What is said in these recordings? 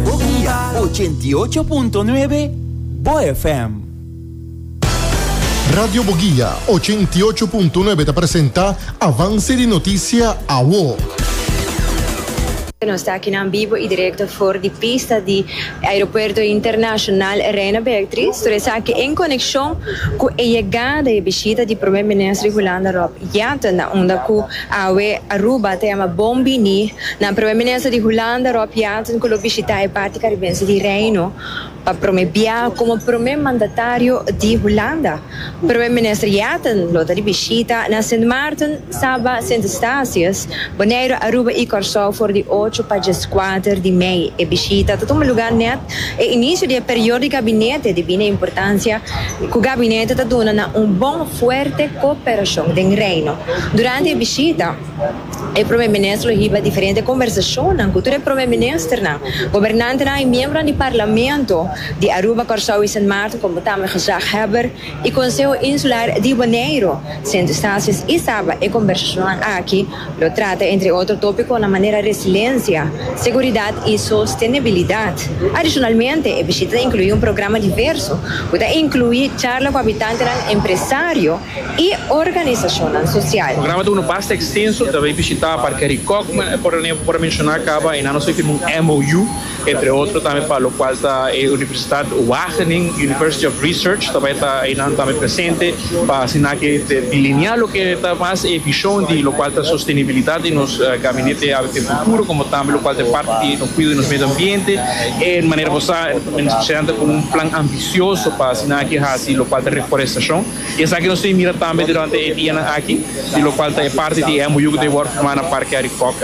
Bokia ochenta i ocho punto nuebe, bo FM. Radio Bogia ochenta i ocho punto nuebe ta presenta Avance di Noticia Awo. Nos ta akinan bibo i direkto for di pista di Aeropuerto Internashonal Reina Beatriz tur esaki en konekshon ku e yegada i e bishita di Prome Minister di Hulanda Rob Jetten na unda ku Awe Aruba ta yama bon bini nan Prome Minister di Hulanda Rob Jeanson ku lo bishita e parti karibense di Reino pa prome biaha komo prome mandatario di Hulanda. Prome Minister Jeanson lo ta di bishita na Sint Maarten, Saba, Sint Eustatius, Boneiru, Aruba i Kòrsou for di ocho pa djeskwater di mei. E bishita ta tuma lugá nèt. E inicio di e periodo di gabinete di bini importancia cu gabinete ta duna na un bon fuerte cooperacion den Reino. Durante e bishita, e Prome Minister lo hiba diferente conversacionnan cu tur e Prome Ministernan, gobernantenan y miembronan di Parlamento di Aruba, Corsou y Sint Maarten como tambe gezaghebber y Conseho Insular di Boneiru. Sint Eustatius y Saba e conversacionnan aki Lo trata entre otro topiconan manera resiliencia, seguridad y sostenibilidad. Adicionalmente, e bishita ta inclui un programa diverso cu ta inclui charla cu habitantenan, empresario y organizacionnan social. Programa ta unda basta extenso, ta bay bishita par Caricocma, e por ta ne'e por a menciona caba y nan nos a firma un MOU. Entre otro tambe pa lokual ta e Universitat Wageningen, University of Research, ta bai ta einan tambe presente pa asina ke te delineá loke ta mas e bishon di lokual ta sostenibilidat di nos gabinete ABP Futuro, komo tambe lokual ta e parti di nos kuido di nos medio ambiente. E manera bo sa, Minister Presidente ta ku un plan ambisioso pa asina ke hasi lokual ta reforestashon. I esaki nos tin mira tambe durante e dianan aki, di lokual ta e parti di e MOU ku ta e wòrdu firmá na Parke Arikòk.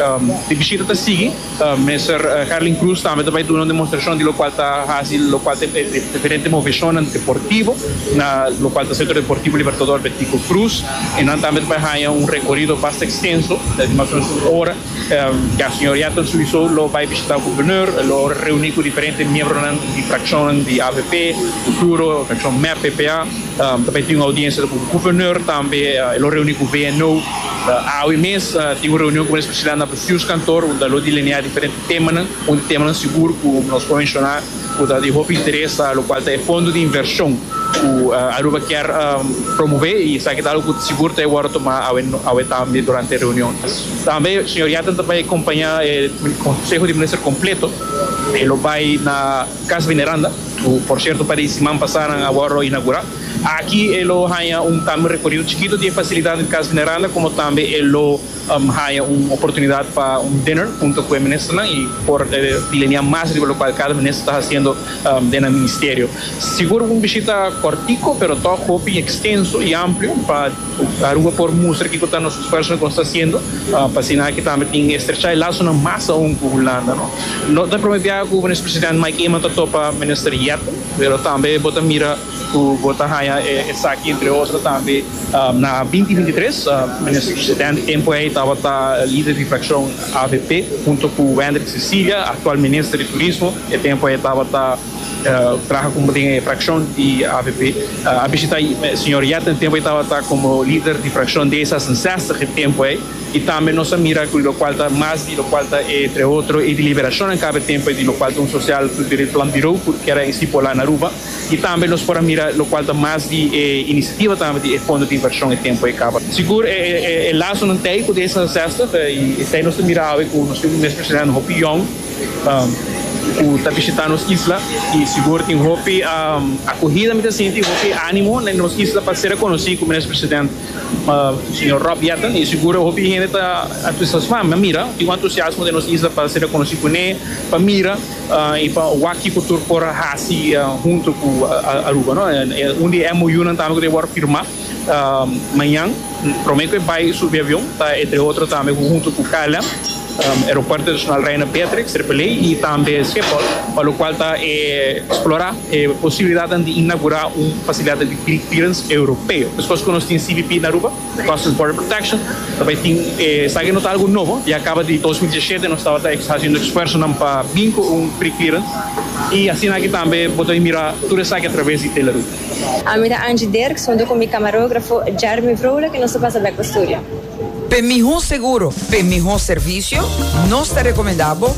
E bishita ta sigui. Mester Herlin Cruz tambe ta bai duna un demostrashon di lokual ta hasi lokual ta e diferente moveshonnan deportivo na lokual ta Sentro Deportivo Libertador Bertico Cruz i nan tambe ta bai haña un rekorido basta ekstenso di mas o menos un ora ya señor Yaton souiso lo bai bishitá Gobernur e lo reuní ku diferente miembronan di frakshonnan di avp futuro frakshon mep ppa ta bai tin un oudiensia ku Gobernur tambe e lo reuní ku VNO awe mes tin un reunion ku Minister Prisciliano. Pius kantor un ta lo delineá diferente temanan. Un di temanan sigur ku nos por menshoná ku ta di hopi interes ta lo kual ta e fondo di invershon ku Aruba kier promové i esaki ta algu ku sigur ta e wòrdu tomá awe tambe durante e reunion. Tambe señor Yatten ta bai kompañá e konseho di minister kompleto. E lo bai na Kas Veneranda ku por sierto pa di siman pasá nan a wòrdu inaugurá. Aki e lo haña un tambe un rekorido chikitu di e fasilidatnan di Kas Veneranda komo tambe e lo. Haña un oportunidat pa un dinner hunto ku e ministernan i por plenia mas riba lokual kada minister ta hasiendo den nan ministerio. Sigur un bishita kòrtiku pero tòg hopi ekstenso i amplio pa Aruba por mustra kiko ta nos esfuersonan ku nos ta hasiendo pa asina aki tambe tin estrechá e lasonan mas aun ku Hulanda. No ta e promé biaha ku Minister Presidente Mike Eman ta topa Minister Yetten pero tambe bo ta mira. Cu bo ta haya esaki entre otro tambe. Na binti binti tres, den e tempo ey tabata lider di fraccion avp hunto cu Wendrick Cecilia, actual minister di Turismo, e tempo ey tabata traha como den e fraccion di avp. A bishita señor Yet e tempo ey tabata como lider di fraccion D zes en zestig e tempo ey. Y tambe nos a mira cu locual ta mas di locual ta entre otro e deliberacionnan caba e tempo ey di locual ta un social cu debe planbirou cu kier a estipola na Aruba. Y tambe nos por a mira locual ta mas di e iniciativa tambe di e fondo di inversion e tempo e caba. Sigur e lazonan t'ey cu deza zestig y t'ey nos ta mira awe cu nos tin mesmo esnan hopi yong cu ta bishita nos isla y sigur tin hopi acogida mi ta sinti y hopi animo na nos isla pa ser reconoci cu Minister President Señor Rob Jetten y sigur hopi hende ta entusiasma, mi a mira tin un entusiasmo den nos isla pa ser reconoci cu ne, pa mira. I pa wak-i ku tur por a hasi huntu ku Aruba. Un di e MOUnan tambe ku ta wòrdu firmá mañan, promé ku e bai subi avion ta entre otro tambe ku huntu ku KLM, Aeropuerto Internashonal Reina Beatrix, Tripoli, i tambe Schiphol, pa lokual ta eksplorá e posibilidatnan di inagurá un fasilidat di klikliranse europeo. Deskos ku nos tin CBP na Aruba, Customs Border Protection ta bay tin esaki no ta algo nobo ya caba di dos mil diecisiete nos tabata ex haciendo esfuerzonan pa bin cu un pre clearance y asina aki tambe bo ta bay mira tur esaki atraves di Teleroo. Ami ta Angie Dirks hunto cu mi camarografo Jeremy Vrolijk y nos ta pasa bek pa studio. P'e miho seguro, p'e miho servicio, nos ta recomenda bo.